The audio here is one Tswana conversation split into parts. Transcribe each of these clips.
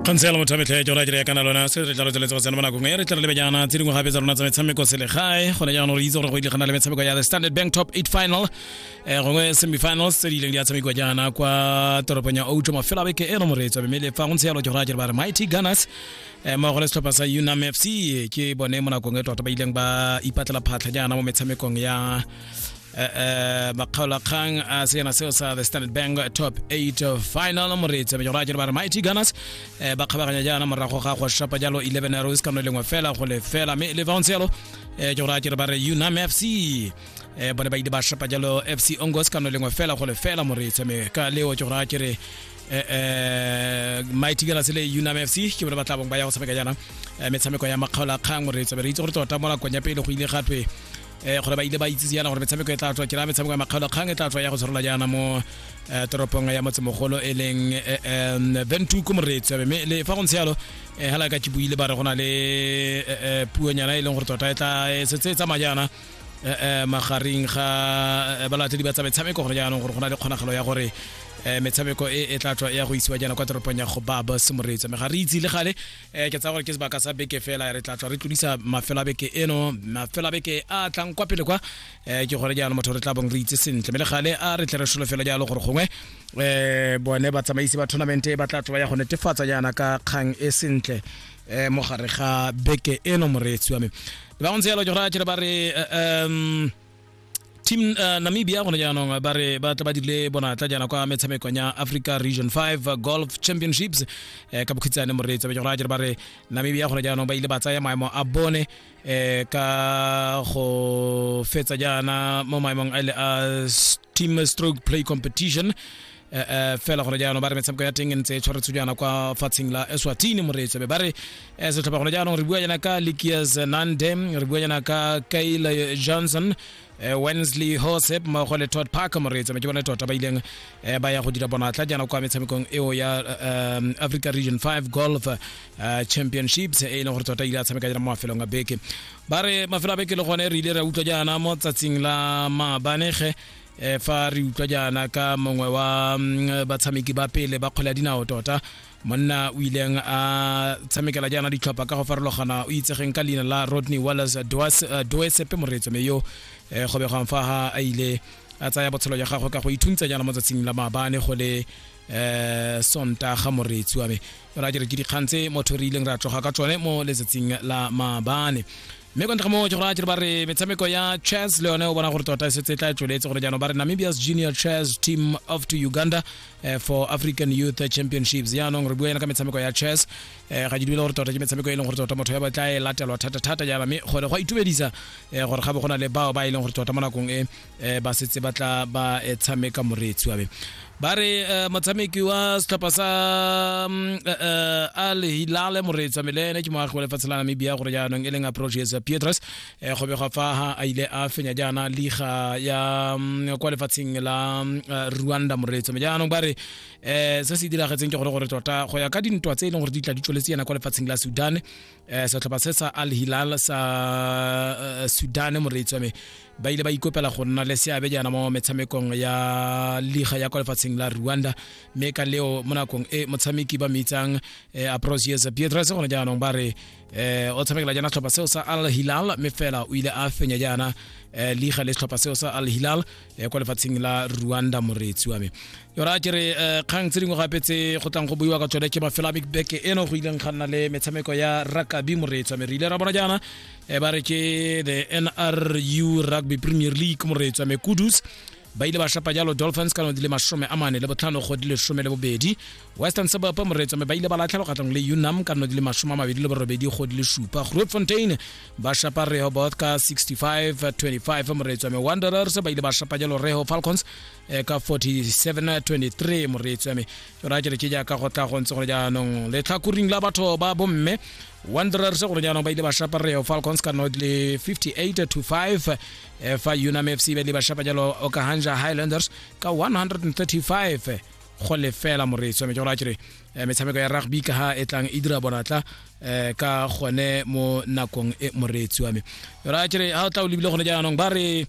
kgantshela motho a metlha jora jere ya kana lona se re tla rotsela go tsena mo nakong e re tla re lebejana tse dingwe gape tsa rona tsa metshameko selegae gone jaanong re itse gore go ile gana le metshameko ya the standard bank top 8 final um gongwe semifinals tse di ileng di a tshamekiwa jaana kwa toropong ya outo mafelo a beke e no moreetswa mme le fa go ntse yalo jora jere ba re mighty gunners um mmogo le setlhopha sa unam fc ke bone mo nakong e tota ba ileng ba ipatlela phatlha jaana mo metshamekong ya Uh, uh, Makgaola Kgang a seena seo sa the standard bank top 8 final moreetsi mejoro a jere ba re mighty gunners uh, ba kgabaganya jaana morago ga go shapa jalo 11 arrows ka no lengwe fela go le fela mme le bounce yalo uh, jore a jere ba re unam fc uh, bone ba ile ba shapa jalo fc ongos ka no lengwe fela go le fela moreetsi mme ka leo jore a jere eh, eh, mighty gunners le unam fc ke bone ba tla bong ba ya go tshameka jaana eh, metshameko ya makgaola kgang moreetsi be re itse gore tota mo nakong ya pele go ile gatwe eh gore ba ile ba itsise yana gore metshameko e tla tswa ke ra metshameko ya makgalo kgang e tla tswa ya go tshwarela jaana mo eh, toropong ya motsemogolo e leng eh, em, ventuko moretsi mme le fa go ntse yalo eh, hala ka ke buile ba re go na le eh, eh, puonyana e leng gore tota e tla e setse e tsamaya jaana eh, eh, magareng ga eh, balatedi ba tsa metshameko gore jaanong gore go na le kgonagalo ya gore eh, metshameko e e tla tswa ya go isiwa jaana kwa toropong ya go baba semoretsa mme ga re itse le gale eh ke tsa gore ke sebaka sa beke fela re tla tswa re tlodisa mafelo a beke eno mafelo a beke a tlang kwa pele kwa eh ke gore jaanong motho re tla bong re itse sentle mme le gale a re tle re sholo fela jalo gore gongwe eh bone batsamaisi ba tournament ba tla tswa ya go netefatsa jaana ka kgang e sentle eh mo gare ga beke eno moreetsi wa me ba go ntse yalo ke gore a kere ba re eh, um team uh, namibia gone jaanong ba re ba tla ba dile bonatla jaana kwa metshamekong ya africa region 5 golf championships eh, ka bokhitsane moreetsi ba jora jere ba re namibia gone jaanong ba ile ba tsaya maemo a bone eh, ka go fetsa jaana mo maemong a ile a team stroke play competition eh, eh, fela gone jaanong ba re metshameko ya teng e ntse e tshwaretswe jaana kwa fatsheng la eswatini moreetso be ba re eh, setlhopha gone jaanong re bua jaana ka likias nande re bua jaana ka kyle johnson eh, wensley hosep mmogo le todd parker moreetso me ke bone tota ba ileng eh, ba ya go dira bonatla jaana kwa metshamekong eo ya eh, um, africa region 5 golf eh, championships e e leng gore tota ile a tshameka jaana mo mafelong a beke ba re mafelo a beke le gone re ile ra utlwa jaana mo tsatsing la maabanege e fa re utlwa jaana ka mongwe wa mm, batshameki ba pele ba kgwele ya dinao tota monna o ileng a tshamekela jaana ditlhopha ka go farologana o itsegeng ka leina la rodney wallace eh, doesepe moreetso me yo eh, go begwang fa ga a ile a tsaya botshelo jwa gagwe ka go ithuntsa jaana mo tsatsing la maabane go le um sonta ga moreetsi wa me ra jere ke dikgang tse motho re ileng ra tloga ka tsone mo letsatsing la maabane mme kwa ntlha mo ke go raya ba re metshameko ya chess le yone o bona gore tota e setse e tla e tsweletse gore jaanong ba re namibia's junior chess team of to uganda eh, for african youth championships jaanong re bua yana ka metshameko ya chess eh, ga ke dumele gore tota ke metshameko e leng gore tota motho ya batla e latelwa thata-thata jaana mme gore go a itumedisa eh, gore ga bo go na le bao ba e leng gore tota mo nakong e eh ba setse ba tla ba eh, tshameka moreetsi wa me ba re eh, motshameki wa setlhopha sa mm, eh, eh, al hilale moreetsi wa me le ene ke moagi wa lefatshe la namibia gore jaanong e leng approaches pietres eh, go begwa fa ha a ile a fenya jaana liga ya mm, kwa lefatsheng la mm, eh, rwanda moreetsi wa me jaanong ba re eh, se se diragetseng ke gore gore tota go ya ka dintwa tse e leng gore di tla di tsweletse yana kwa lefatsheng la sudan eh setlhopha se sa al hilal sa eh, sudan moreetsi wa me ba ile ba ikopela go nna le seabe jaana mo metshamekong ya liga ya kwa lefatsheng la rwanda mme ka leo mo nakong e motshameki ba mitsang eh, aprosius pietres gone jaanong ba re eh, o tshamekela jaana setlhopha seo sa al hilal mme fela o ile a fenya jaana eh, liga le setlhopha seo sa al hilal eh, kwa lefatsheng la rwanda moreetsi wa me yora ke re eh, kgang tse dingwe gape tse go tlang go buiwa ka tsone ke mafelo a bikbeke eno go ileng ga nna le metshameko ya rakabi moreetsi wa me re ile ra bona jaana eh, ba re ke the nru rugby premier league moreetsi wa me kudus ba ile ba shapa jalo dolphins ka di le masome a mane le botlhano go di le some le bobedi western suburb moreetso mme ba ile ba latlhelwa kgatlhanong le unam ka di le masome a mabedi le borobedi go di le supa grootfontein ba shapa rehoboth ka 65-25 moreetsi wa me wanderers ba ile ba shapa jalo reho falcons eh, ka 47-23 moreetsi wa me yona ke re ke jaaka go tla go ntse gore jaanong letlhakoring la batho ba bomme wanderers gore jaanong ba ile ba shapa reho falcons ka not le 58-25 eh, fa unam fc ba ile ba shapa jalo okahanja highlanders ka 135 go lefela moreetsi wa me ke gore a kere eh, metshameko ya rugby ka ha e tlang e dira bonatla um ka gone mo nakong e moreetsi wa me ra kere ga o tla o lebile gone jaanong ba re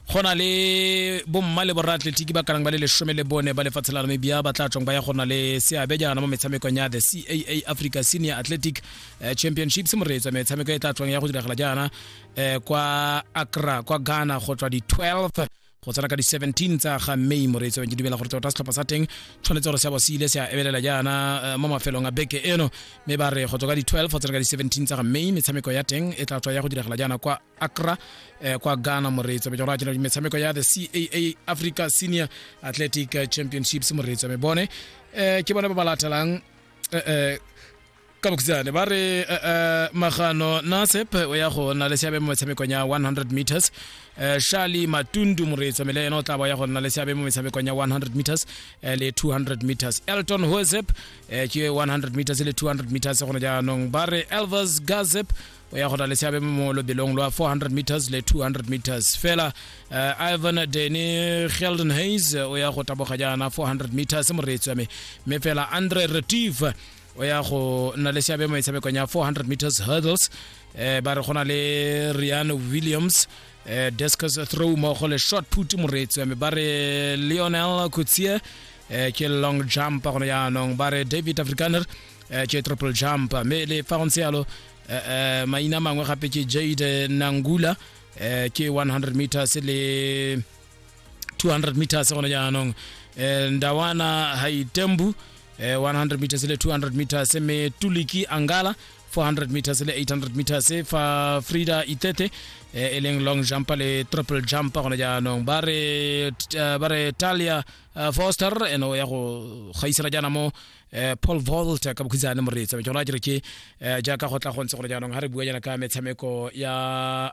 go na le bomma le boraatletiki ba kanang ba le lesome le bone ba lefatshe la namibia ba tla tswang ba ya go na le seabe jaana mo metshamekong ya the caa africa senior athletic eh, championships moreetsa metshameko e tla tswang ya go diragala jaana eh, kwa akra kwa ghana go tswa di-12 go tsena ka di-17 tsa ga may moreetsi wa ke dumela gore tota setlhopha sa teng tshwanetse gore se bo se ile se a ebelela jaana eh, mo mafelong a beke eno mme ba re go tswa ka di-12 go tsena ka di-17 tsa ga may metshameko ya teng e tla tswa ya go diragala jaana kwa acra eh, kwa ghana moreetsi wa jora jena metshameko ya the caa africa senior athletic championships moreetsi wa me bone eh, ke bone ba ba latelang eh, eh, ka bokhutshwane ba re uh, uh, magano nasep o ya go nna le seabe mo metshamekong ya 100 meters uh, shali matundu moreetso mele ena o tla ba ya go nna le seabe mo metshamekong ya 100 meters uh, le 200 meters elton hosep uh, ke 100 meters le 200 meters gone jaanong ba re elvers gazep o ya go na le seabe mo lobelong lwa 400 meters le 200 meters fela uh, ivan deni gelden hayes o ya go taboga jaana 400 meters moreetso me mme fela andre retive o ya go nna le seabe mo metshamekong ya 400 meters hurdles eh ba re gona le Rian Williams eh discus throw mo go le short put moretsi mme ba re Lionel Kutsie eh ke long jump go ne jaanong ba re David Afrikaner eh ke triple jump mme le fa go ntse yalo eh, eh, maina mangwe gape ke Jade Nangula eh ke 100 meters le 200 meters gona jaanong eh, ndawana haitembu eh, 100 meters le 200 meters me tuliki angala 400 meters le 800 meters eh, fa frida itete eh, e leng long jump le triple jump gona jaanong ba re eh, ba re talia eh, foster ene o ya go gaisela jaana mo eh, paul volt ka bokhutshane moreetsa ke gona ke re ke eh, jaaka go tla go ntse gona jaanong ga re bua jaana ka metshameko ya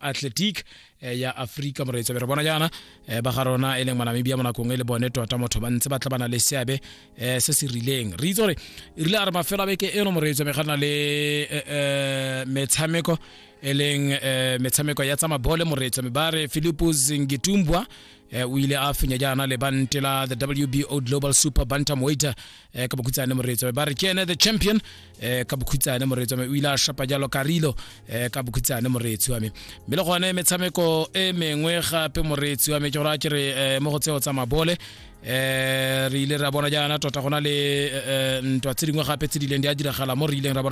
athletic Eh, ya aforika moreetsabe re bona jaana eh, ba ga rona e leng manamibia mo nakong e le bone tota motho ba ntse ba tla bana le seabe um se se rileng re itse gore e rile a re mafelo a beke eno moreetsabe ga na le metshameko e leng metshameko ya tsamabole moreetsabe ba re philipus ngitumbwa um eh, o ile a fenya jaana le bante la the wbo global super bantam weight eh, ka bokhutsane moretso ba re ke ene the champion eh, ka bokhutsane moretso o ile a shapa jalo karilo eh, ka bokhutsane moretso wa me mme le gone metshameko e mengwe gape moretso wa me ke gore a ke re eh, mo go tseo tsa mabole eh re ile ra bona jaana tota gona le eh, eh, ntwa tse dingwe gape tse di ileng di a diragala mo re ileng ra bona